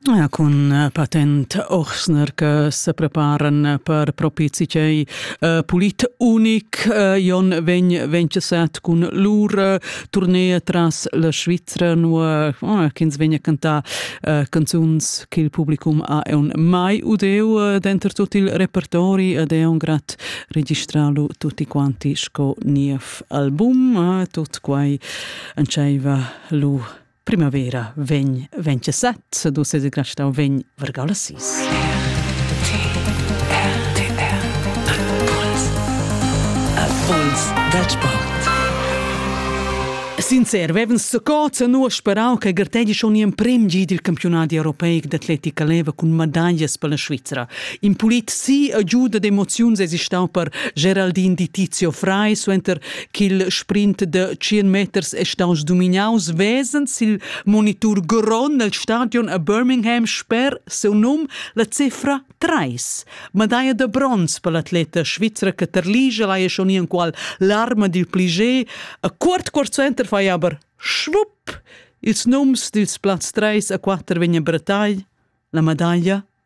Ja, cun eh, patent Ochsner che se preparan per propizi cei uh, pulit unic uh, Jon vegn vencesat cun lur uh, tournée tras la Svizzera nu uh, ch'ins vegna cantar uh, canzuns che il publicum ha un mai udeu uh, denter tot il repertori ed è un grat registralu tutti quanti sco niev album uh, tot quai anceiva lu Primavera vegn 27, dus ses grasta vegn vargau la sis. Puls da sport. Sincer, vevens scoza nu sperau che gartegi schon in prim gi dil campionat europeic d'atletica leva cun medaglias per la Svizzera. In pulit si agiuda d'emoziuns esistau per Geraldin di Tizio Frei suenter ch'il sprint da 100 meters è staus dominaus vesend sil monitur grond nel stadion a Birmingham sper seu num la cifra 3. Medaia da bronz per l'atleta svizra che terligia lai schon enqual l'arma dil plige. A quart quart center fai aber schwupp! Ils nums dils plaz 3 a 4 vegnan brattai, la medaglia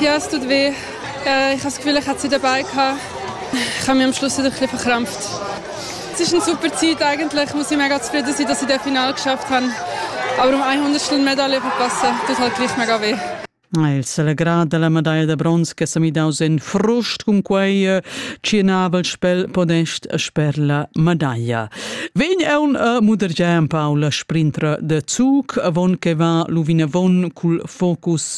Ja, es tut weh. Äh, ich habe das Gefühl, ich hätte sie dabei gehabt. Ich habe mich am Schluss wieder ein bisschen verkrampft. Es ist eine super Zeit eigentlich. Ich muss mega zufrieden sein, dass ich das Finale geschafft habe. Aber um 100 Medaille verpassen, tut halt gleich mega weh. Il celebrà della medaglia da bronz che s'ha midaus in frust cun quei eh, tschenavel spel podest sper la medaglia. Vegn è un uh, mudergià en Paula sprintra de Zug, avon che va luvinavon cul focus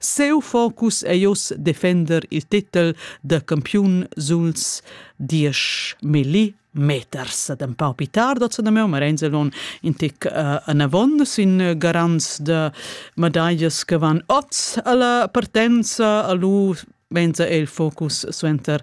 Siu focus ei oz defender il titel da campiun suls diesch milli meters. Ed empau pi tard, oz da meu, Marenzelon, in tic uh, anavon sin garants da medallas che van oz alla partenza, a lu venza il focus suenter